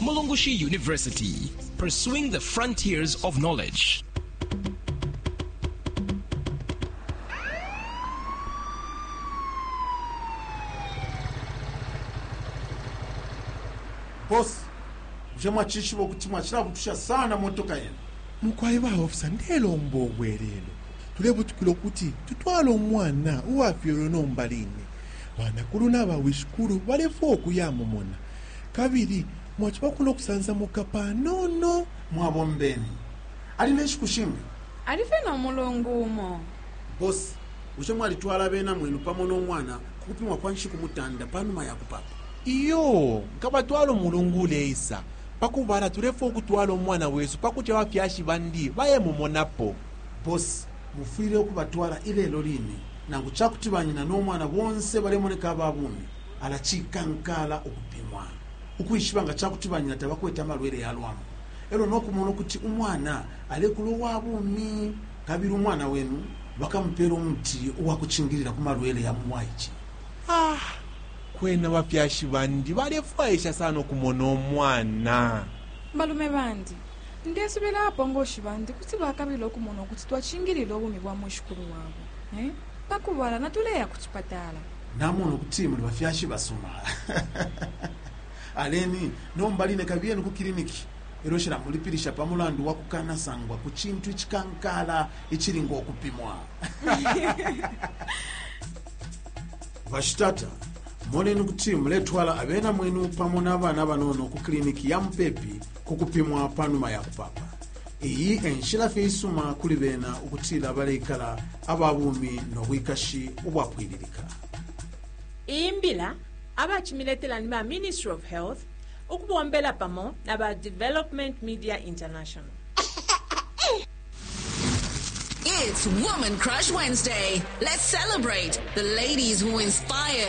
Mulungushi University, pursuing the frontiers of knowledge. bosi bushe mwacishiba ukuti mwacilabutusha sana motoka yenu mukwai ba ofisa ndelomba obwelelo tulebutukila ukuti tutwale omwana uwafyelwe nomba line banakulu na bawishikulu balefwa okuyamumona Kabili mwaciba kuno kusansamuka panono. Mwabombeni. Ali ne nshiku shinga? Ali fye no mulungu umo. Boss, bushe mwalitwala abena mwenu pamo no mwana ku kupimwa kwa nshiku mutanda pa numa ya kupapa? Iyo, nkabatwala umulungu uleisa. Pa kubala, tulefwaya ukutwala umwana wesu pa kuti abafyashi bandi bayemumonapo. Boss, mufwile ukubatwala ilelo line, nangu ca kuti banyina no mwana bonse balemoneka aba bumi. Ala cikankaala ukupimwa ukwishiba nga ca kuti banyina tabakwete amalwele ya lwambu e lyo no kumona ukuti umwana alekula uwa bumi! Kabili umwana wenu bakamupeela umuti uwa kucingilila ku malwele ya mu bwaice. a Kwena abafyashi bandi balefwaisha sana ukumona umwana. Balume bandi, Ndesubila abapongoshi bandi kuti bakabila ukumona ukuti twacingilila ubumi bwa mwishikulu wabo. a Pa kubala, natuleya ku cipatala. Namona ukuti muli bafyashi basuma. Aleni nomba line kabiyeni ku kiliniki e lyo shilamulipilisha pa mulandu wa kukanasangwa ku cintu icikankaala icili ngo kupimwa. Bashitata, moneni ukuti muletwala abena mwenu pamo na bana banono ku kiliniki ya mupepi ku kupimwa pa numa ya kupaapa. iyi enshila fye isuma kuli bena ukutila baleikala aba bumi no bwikashi ubwapwililika iyi mbila abacimiletela ni ba ministry of health ukubombela pamo na ba development media international It's Woman Crush Wednesday. Let's celebrate the ladies who inspire